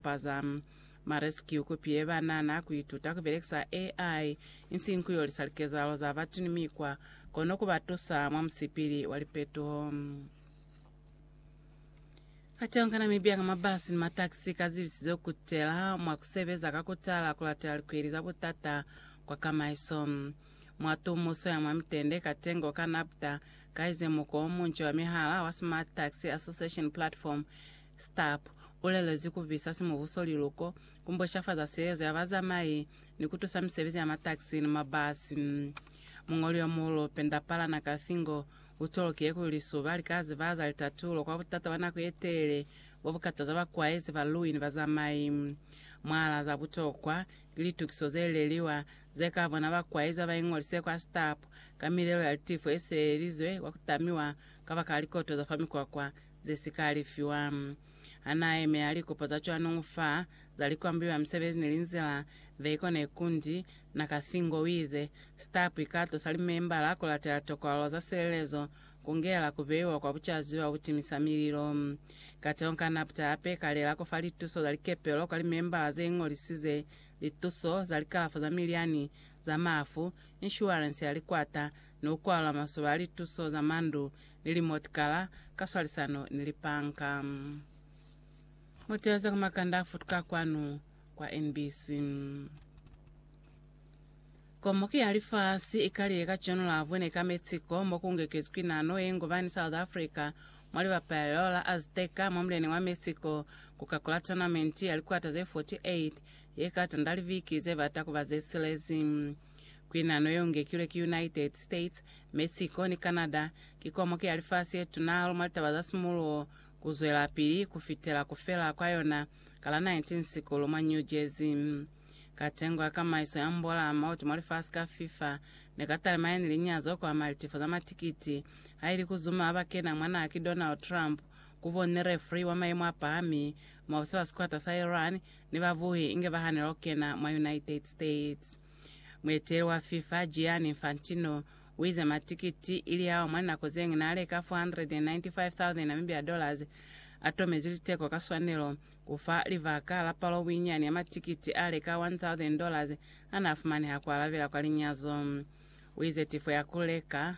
Paza MaRescue kupi ye ba nana ku ituta ku belekisa AI insiñi ku yolisa likezahalo za batu ni mikwa, kono ku ba tusa mwa musipili wa lipetoho. Kateho ka Namibia ka mabasi ni matakisi ka zibisize ku kutela mwa ku sebeza ka ku tala ku latela likweli za butata kwa kamaiso. Mwa tumuso ya mwa mitende, Katengo ka NABTA ka ize muko o munca wa mihala wa Smart Taxi Association Platform Stapp u lelezwi ku visa simubuso liluko, ku mboshafaza seezo ya bazamai, ni ku tusa misebezi ya mataxi ni mabasi. Muñoli yo muulu, Pendapala Nakafingo, u tolokiye kuli suba li ka zibaza litatulo kwa butata bwa nako ye telele bo bu kataza bakwaezi, balui ni bazamai. Mwalaa za butokwa, ki litukiso ze leliwa ze ka bona bakwaezi ba ba iñolise kwa Stapp ka milelo ya litifo ye seelelizwe kwa ku tamiwa kabakala likoto za fa mikwakwa ze si ka alifiwa. Ha n'a yemela likopo za cwanuñu fa za likwambi mwa misebezi ni linzila, Veiko Nekundi, na ka Thingo, u ize, Stapu i ka tusa limembala ku latela tokwalo za silelezo, ku ngela ku beiwa kwa bucazi bwa butimisa mililo. Kateho ka napta hape i ka lela ku fa lituso za likepelo kwa limembala ze ingolisize, lituso za likalafo za milyani, za mafu, inshuwarense ya likwata, ni ku kwala masoba a lituso za mandu ni limotikala ka swalisano ni lipanka. Mu teeze ku makanda a futuka kwanu kwa NBC. Komuki ya Lifasi i kalile kacenu la Vune ka Mexico mo ku ngekezwi nano ye ngubani South Africa mwa libapelo la Azteca mwa mulyaneni wa Mexico ku kakula tournament ya likwata ze 48 ye ka tanda liviki ze bata ku ba ze silezi. Kuinano yeo ngekilwe ki United States, Mexico, ni Canada. Ki komoki ya lifasi yetuna hahulu mwa litaba za simuluho kuzwelapili kufitela kufela kwa yona ka la 19 sikulu mwa New Jersey. Ka tengo ya kamaiso ya mbola mautu mwa lifasi ka FIFA, neka talimanya ni linyazo kuama litifo za matikiti, haili kuzuma haba kena mwa naha ki Donald Trump, kuvoni refri wa maimo apahami, mwabusa ba sikwata sa Iran, ni babuhi inge bahanela kukena mwa United States. Mueteleli wa FIFA, Gianni Infantino, uize matikiti ili ao mwa linako zeñwi naaleka 495,000 Namibia dollars atomezwi liteko ka swanelo, kufa libaka la palo buinyani ya matikiti aaleka 1,000 dollars anaafumaniha kualabela kwa linyazo. Uize tifo ya kuleka,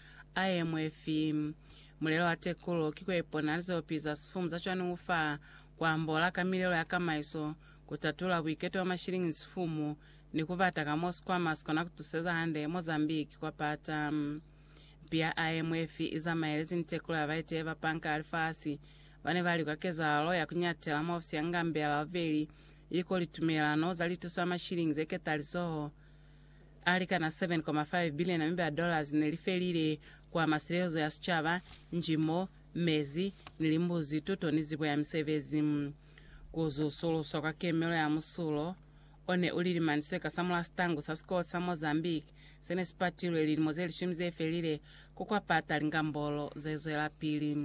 IMF. Mulelo wa tekulo ki kuipona lizopi za sifumu za cwaningu fa kuambola ka milelo ya kamaiso, kutatola buiketo bwa mashilingi ni sifumu, ni kubata ka mo sikwama sikona kutuseza hande Mozambique kwa pata. Mpi ya IMF izamaelezi ni tekulo ya baiteyi ba Panka ya Lifasi bane bali kwa kezahalo ya kunyatela mwa ofisi ya Ngambela Overi iliko litumelano za lituso ya mashilingi zeketalizoho a likana 7.5 biliona mi ba dollars ne li felile ku ama silezo ya sicaba, njimo, mezi, ni limbuzi, tuto ni zibo ya misebezi. Ku zusuluswa kwa kemelo ya musulo o ne u lilimani seka sa mul'a sitangu sa sikolo sa Mozambique se ne si patilwe lilimo ze lishumi ze felile ku kwa pata lingambolo ze zwelapili.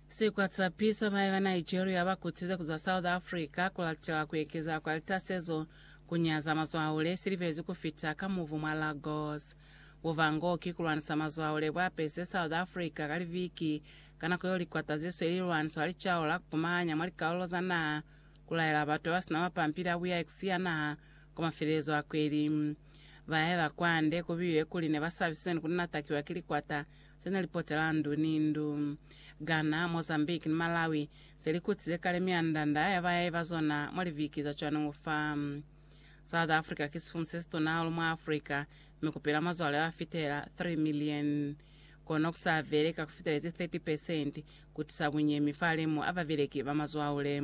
Sikwatsapiso, Mai ba Nigeria ba kutize ku zwa South Africa ku latela ku ekeza kwa litasezo ku nyaza mazwaule si libezi ku fita ka muvu mwa Lagos. Buvango ki ku lwanisa mazwaule bwa pese South Africa ka liviki ka nako yeo likwata ze sweli lilwaniso ha li caula ku pumahanya mwa likalulo za naha ku laela batu ba ba sina mapampili a buya ikusi ya naha kwa mafelelezo a kweli. Ba haeba kwande ku builwe kuli ne ba sabisizwe ni ku natakiwa ki likwata se ne li potela ndu ni ndu Ghana, Mozambique ni Malawi, se li kutize kale mianda-nda ya bayai ba zona mwa liviki za cwaneho fa. South Africa ki sifumu se situna hahulu mwa Africa, mi ku pila mazwale ba fitela 3 milioni. Kono ku sa vele ka ku fitelezi 30 pesenti ku tisa bunyemi fa limu a babeleki ba mazwaule.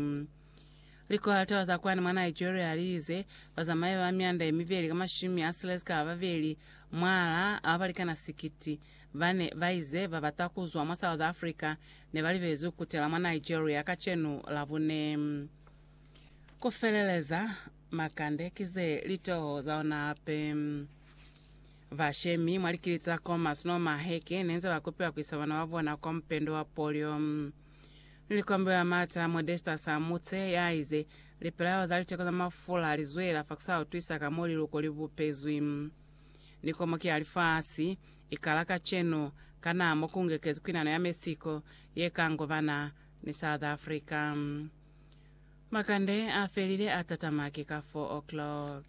Likohata za kwani mwa Nigeria liize, Bazamayi ba myanda yemibeli ka mashumi a silezi ka babeli mwala a balikana sikiti bane baize babata kuzwa mwa South Africa nebalibezi kukutela mwa Nigeria kacenu Labune. Kufeleleza makande kize litoho zaona hape. Bashemi mwa likiliti za Khomas no Maheke neenze bakupiwa kuisa bana babona kwa mupendo wa polio. Likombe la mata Modestus Amutse yaize, Lipelaelo za liteko za mafula lizwela fa kusautwisa ka mo liluko li bupezwi. Ni komoki ya lifasi, ikala kacenu, kana mo kungekezi kwinano ya Mexico yekangobana ni South Africa. Makande afelile atatama ki ka 4 o'clock.